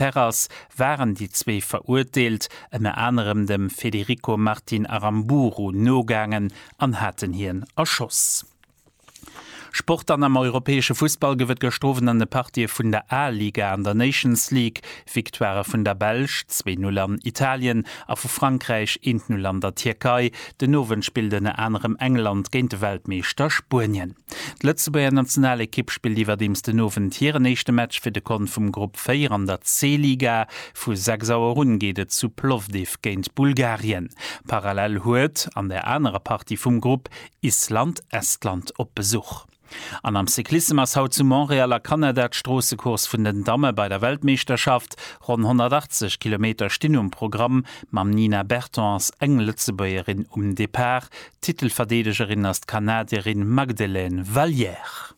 Perras waren déi zwee Verurteelt ënner anerem dem Federico Martin Aramburu nogaangen an haten hien erschoss. Sport An am europäesche Fussball gouf et gestroofen an de Partië vun der A-Liga an der Nations League Victoirë vun der Belsch, zwee Null an Italien, a vu Frankräich, eent Null an der Tierkei. Den Owend spillt ënner anerem England géint de Weltmeeschter Spuenien. D'Lëtzebuerger Nationalekipp spillt iwwerdeems den Owend hiren éischte Match fir de Kont vum Grupp 4 an der C-Liga. Vu 6 Auer un geet et zu Plovdiv géint Bulgarien. Parallel huet an der anerer Partie vum Grupp Island Estland op Besuch. An am Cyclissem ass haut zu Montréal a Kanada d'Stroossecourse vun den Damme bei der Weltmeeschterschaft. Ronn 180 Kilometer stinn um Programm. Mam Nina Berton ass eng Lëtzebuergerin um Depart. Titelverdeedegerin ass d'Kanadierin Magdelaine Valliere.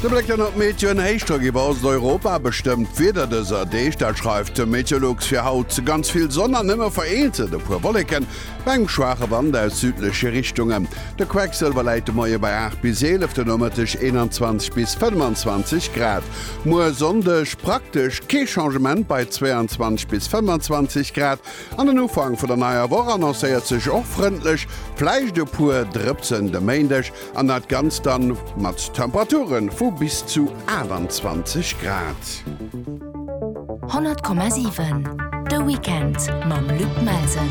De Bléck ënnert d'Meteo, En Héichdrock iwwer Osteuropa bestëmmt d'Wieder dëser Deeg. Dat schreift de Meteolux fir haut. Ganz vill Sonn an nëmme vereenzel e puer Wolleken bei engem schwaache Wand aus südleche Richtungen. De Quecksëlwer läit de Moie bei 8 bis 11, de Nomëtteg 21 bis 25 Grad. Muer Sonndeg praktesch kee Changement bei 22 bis 25 Grad. An den Ufank vun der neier Woch annoncéiert sech och frëndlech, vläicht e puer Drëpsen de Méindeg, an dat Ganzt dann mat Temperature vu bis zu 28 Grad. 100,7 De Weekend mam Luc Melsen.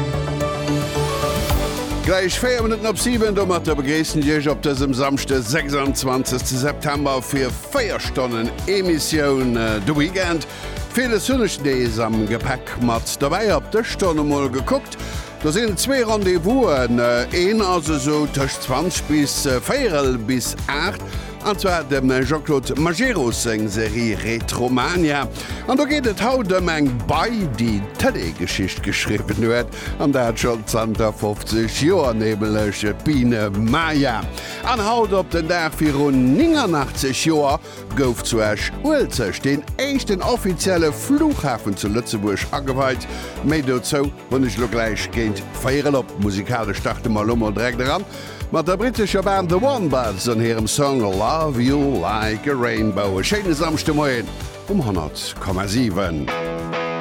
Gläich 4 Minutten op 7. Domatter begréissen ech Iech op dësem Samschde 26 September fir 4 Stonnen Emissioun De Weekend. Ville Sonneg Days am Gepäck mat dobäi. Op d'Dëschtonn emol gekuckt, do sinn zwee Rendez-Vousen. Een ass esou tëscht 20 bis véierel bis aacht, an zwar dem Jean-Claude Majerus seng Serie Retromania. An do geet et haut ëm eng Bei, déi Tëlee-Geschicht geschriwwen huet, an dat scho zanter 50 Joer, nämlech d'Biene Maya. An haut op den Dag viru 89 Joer gouf zu Esch-Uelzecht deen éischten offizielle Flughafen zu Lëtzebuerg ageweit. Méi dozou hunn ech elo gläich géint véier erop. Musikalesch starte mer elo mol direkt eran mat der brittescher Band The Wombats an hirem Song Love You Like A Rainbow. E schéine Samschdemoien um 100,7.